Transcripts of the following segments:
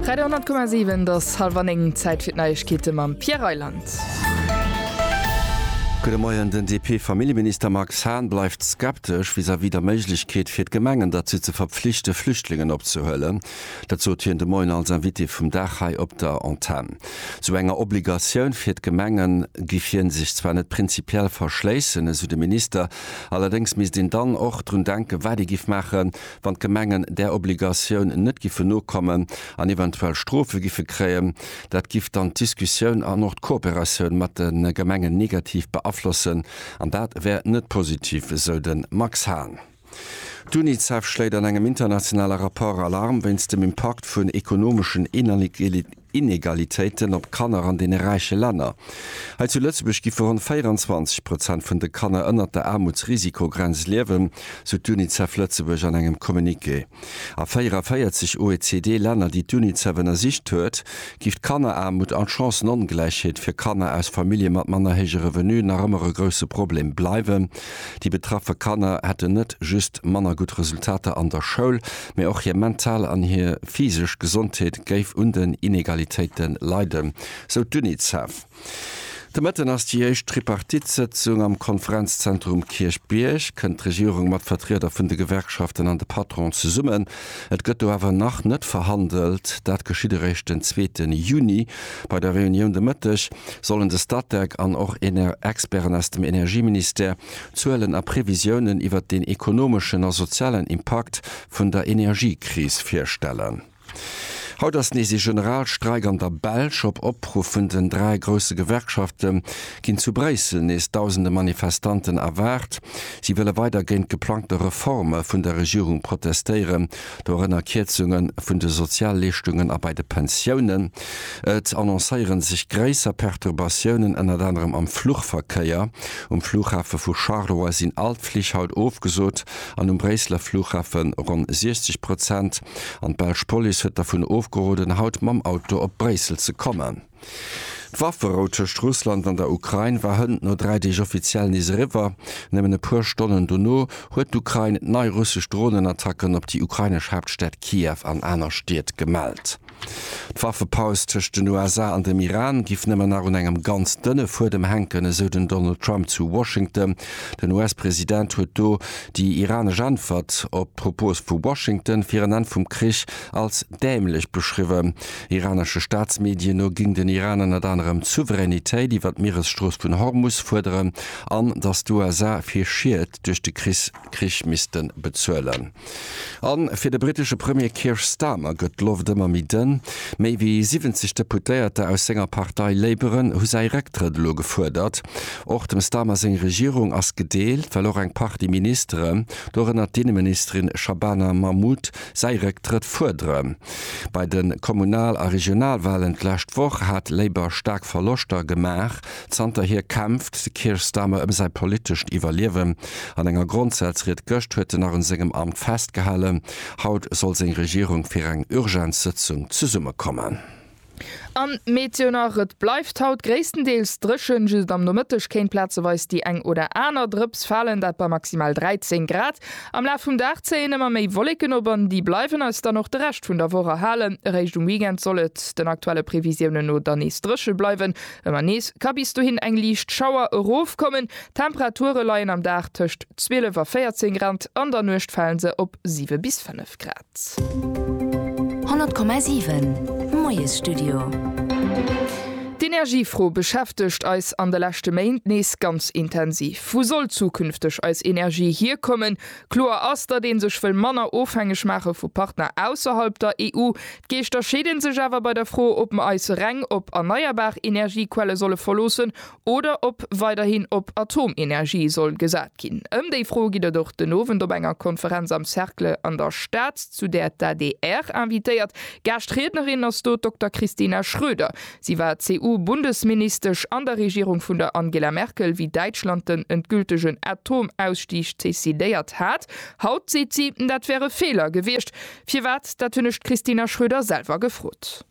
Radio 10,7 et ass halwer 9, Zäit fir d'Neiegkeete mam Pierre Reyland. Gudde Moien, Den DP-Familljeminister Max Hahn bleift skeptesch vis-à-vis der Méiglechkeet fir d'Gemengen derzou ze verpflichte Flüchtlingen opzehuelen. Dat sot hien de Moien als Invité vum Dag hei op der Antenn. Esou enger Obligatioun fir d'Gemengen giff hien sech zwar net prinzipiell verschléissen, esou de Minister, allerdéngs misst een dann och drun denken, wat ee giff maachen, wann d'Gemengen där Obligatioun net giffe nokommen an eventuell Strofe giffe kréien, dat giff dann d'Diskussioun an och d'Kooperatioun mat de Gemengen negativ beaflossen an dat wär net positiv, esou de Max Hahn. D'Unicef schléit an engem internationale Rapport Alarm wéinst dem Impakt vun ekonomeschen Inegalitéiten. Inegalitéiten op Kanner an deene räiche Länner. Hei zu Lëtzebuerg giffe ronn 24 Prozent vun de Kanner ënnert der Aarmutsrisikogrenz liewen, sou d'UNICEF Lëtzebuerg an engem Communiqué. A 44 OECD-Länner, déi d'UNICEF ënnersicht huet, giff d'Kanneraarmut an d'Chancënongläichheet fir Kanner aus Famillje mat manner héije Revenuen nach ëmmer e grousse Problem bleiwen. Déi betraffe Kanner hätten net just manner gutt Resultater an der Schoul, mee och hir mental an hir physesch Gesondheet géif un den Inegalitéite leiden, sou d'Unicef. De Mëtten ass déi éischt Tripartite-Sëtzung am Konferenzzentrum Kierchbierg. Kënnt d'Regierung mat Vertrieder vun de Gewerkschaften an de Patronen zesummen? Et gëtt do awer nach net verhandelt. Dat geschitt eréischt den zweete Juni bei der Reunioun. De Mëtteg sollen de Statec an och Experten aus dem Energieministère Zuelen a Previsiounen iwwert den ekonomeschen a sozialen Impakt vun der Energiekris virstellen. Haut ass nees ee Generalstreik an der Belsch. Op Opruff vun den dräi grousse Gewerkschafte ginn zu Bréissel nees dausende Manifestanten erwaart. Si wëlle weider géint geplangte Reforme vun der Regierung protestéieren, dorënner Kierzunge vun de Sozialleeschtungen a bei de Pensiounen. Et annoncéiere sech gréisser Perturbatiounen, ënnert anerem am Fluchverkéier. Um Flughafe vu Charleroi sinn all d'Flich haut ofgesot an um Bréisseler Flughafe ronn 60 Prozent. An d'belsch Police huet dervun ofgeroden, haut mam Auto op Bréissel ze kommen. D'Wafferou tëscht Russland an der Ukrain war hënt no dräi Deeg offiziell nees eriwwer. Nëmmen e puer Stonnen dono huet d'Ukrain nei russesch Dronenattacken op déi ukrainesch Haaptstad Kiew an aner Stied gemellt. D'Waffepaus tëscht den USA an dem Iran giff nëmmen nach un engem ganz dënne Fuedem hänken, esou den Donald Trump zu Washington. Den US-President huet do déi iranesch Äntwert op d'Propos vu Washington fir en Enn vum Krich als dämlech beschriwwen. Iranesche Staatsmedien no géing den Iran ënnert anerem d'Souveränitéit iwwer d'Mieresstrooss vun Hormus fuerderen an datt d'USA fir Schied duerch de Krich misste bezuelen. A fir de britesche Premier Keir Starmer gëtt d'Loft ëmmer méi dënn. Méi wéi 70 Deputéierter aus senger Partei Labouren hu säi Récktrëtt elo gefuerdert. Och dem Starmer seng Regierung ass gedeelt, well och eng Partie Ministeren, dorënner d'Inneministerin Shabana Mahmood, säi Récktrëtt fuerdere. Bei de Kommunal a Regionalwalen d'lescht Woch hat Labour staark Verloschter gemaach. Zanterhier kämpft de Keir Starmer ëm säi politescht Iwwerliewen. An enger Grondsazried gëscht huet en nach un sengem Amt festgehalen. Haut soll seng Regierung fir eng Urgenzsëtzung zesummekommen. An Meteo nach, Et bleift haut gréisstendeels dréchen, just am Nomëtteg kéint plazeweis déi eng oder aner Drëps falen, dat bei maximal 13 Grad. Am Laf vum Dag zéien ëmmer méi Wolleken op an déi bleiwen eis dann och de Rescht vun der Woch erhalen. Eréischt um Weekend soll et, den aktuelle Previsiounen no, dann nees dréche bleiwen. Ëmmer nees ka bis dohin eng liicht Schauer erofkommen. D'Temperature leien am Dag tëscht 12 a 14 Grad, an der Nuecht fale se op 7 bis 5 Grad. 100,7 Moiesstudio. D'Energiefro beschäftegt eis an de leschte Méint nees ganz intensiv. Wou soll zukünfteg eis Energie hierkommen? Kloer ass, datt ee sech wëll manner ofhängeg maache vu Partner ausserhalb der EU. D'Geeschter scheede sech awer bei der Fro, ob mer eis reng op erneierbar Energiequelle solle verloossen oder ob weiderhin op Atomenergie soll gesat ginn. Ëm déi Fro gitt et och den Owend op enger Konferenz am Cercle an der Stad, zu där d'ADR invitéiert. Gaaschtriednerin ass do d'Dokter Christina Schröder. Si war CSU-Bundesministesch an der Regierung vun der Angela Merkel, wéi Däitschland den endgültegen Atomausstieg decidéiert hat. Haut seet si, dat wär e Feeler gewiescht. Firwat, dat hunn ech d'Christina Schröder selwer gefrot.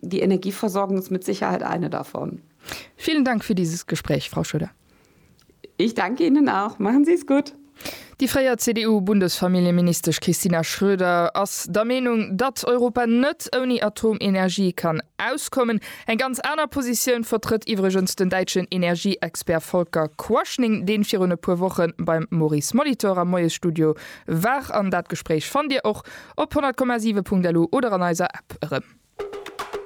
Die Energieversorgung ist mit Sicherheit eine davon. Vielen Dank für dieses Gespräch, Frau Schröder. Ich danke Ihnen auch. Machen Sie es gut. Déi fréier CDU-Bundesfamilljeministesch Christina Schröder ass der Meenung, datt Europa net ouni Atomenergie kann auskommen. Eng ganz aner Positioun vertrëtt iwwregens den däitschen Energieexpert Volker Quaschning, dee virun e puer Woche beim Maurice Molitor am Moiesstudio War an dat Gespréich fannt Dir och op 100,7.lu oder an eiser App erëm.